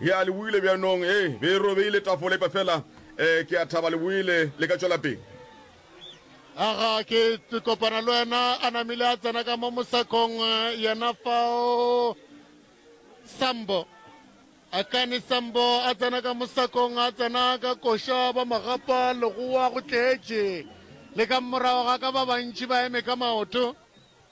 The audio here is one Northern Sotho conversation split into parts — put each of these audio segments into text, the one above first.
Ea, le boile bjanong. E be e robeile tafole, epa feela ke a thaba le boile, le ka tšwela pele. Aga, ke, ke kopana le wena. A namile a tsena ka mo mosakong, yena fao. Sambo. Akani Sambo a tsena ka mosakong, a tsena ka koša, ba magapa, legoa, go tletše. Le ka morago ga ka ba bantši ba eme ka maoto.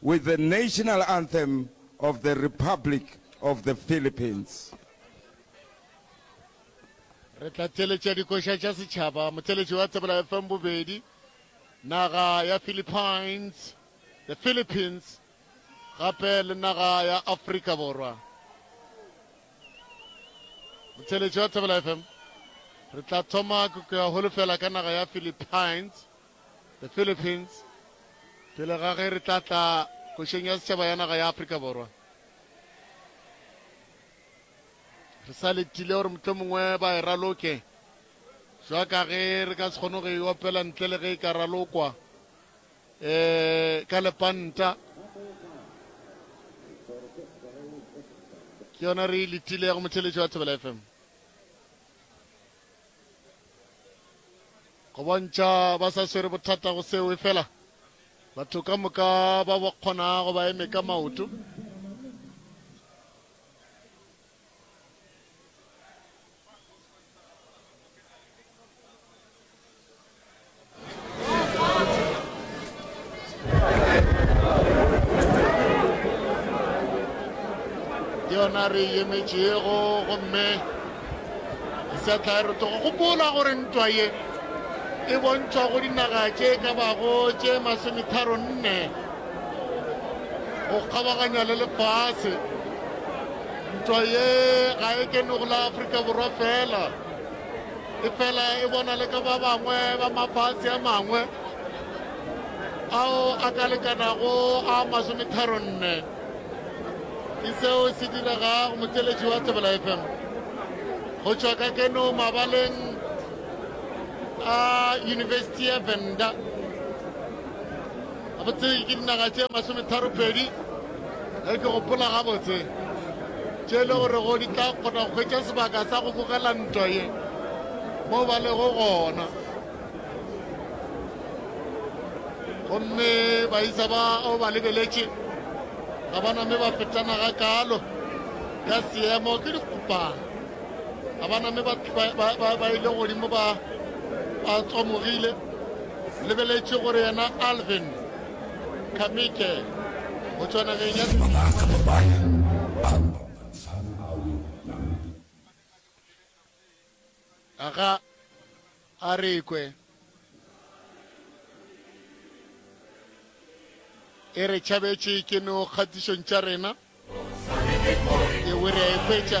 with the National Anthem of the Republic of the Philippines. re tla theletša dikoša tša setšhaba motheletši wa tsebela fm bobedi naga ya philippines the philippines gape le naga ya afrika borwa motheletši wa tsebela fm re tla thoma ke ya holofela ka naga ya philippines The Philippines, Pele ga ge re tla tla Košong ya Setšhaba ya Naga ya Afrika Borwa, re sa letile gore mohlomongwe ba e raloke, jwa ka ge re ka se kgone go e opela ntle le ge e ka ralokwa um ka lepanta. Ke yona re e letilego, motheeletši wa Thobela FM. go bontšha ba sa swere bothata go seo efela batho ka moka ba ba kgonago ba eme ka maoto yona re emetšego gomme setla re tlogo gopola gore ntwa ye e bontšhwa go dinaga tše e ka bago tše masometharo nne go kgabaganya le lefase ntwa ye ga e kene go la aforika borwa fela efela e bona le ka ba bangwe ba mafase a mangwe ao a ka lekanago a masometharo nne ke seo se direga go motšeletši wa tsebela fm go tšwa ka keno mabaleng a yunibesithi ya venda Gabotse ke dinaga tše masometharopedi ge ke gopola gabotse, tše e le gorego di tla kgona go hwetša sebaka sa go bogela ntwa ye mo ba lego gona. Gomme baisa ba o ba lebeletše ga ba name ba fetana ga kaalo ka seemo ke dikgopana ga ba name ba ile godimo ba tswamogile Lebeletše gore yena Alvin Kamike o tšwa nageng ya. Mabaka ba bayang ba lwantshan ao Namibia. Aga a re ikwe e re tšhabetše ke no kgatišong tša rena, ewe re a e hwetša.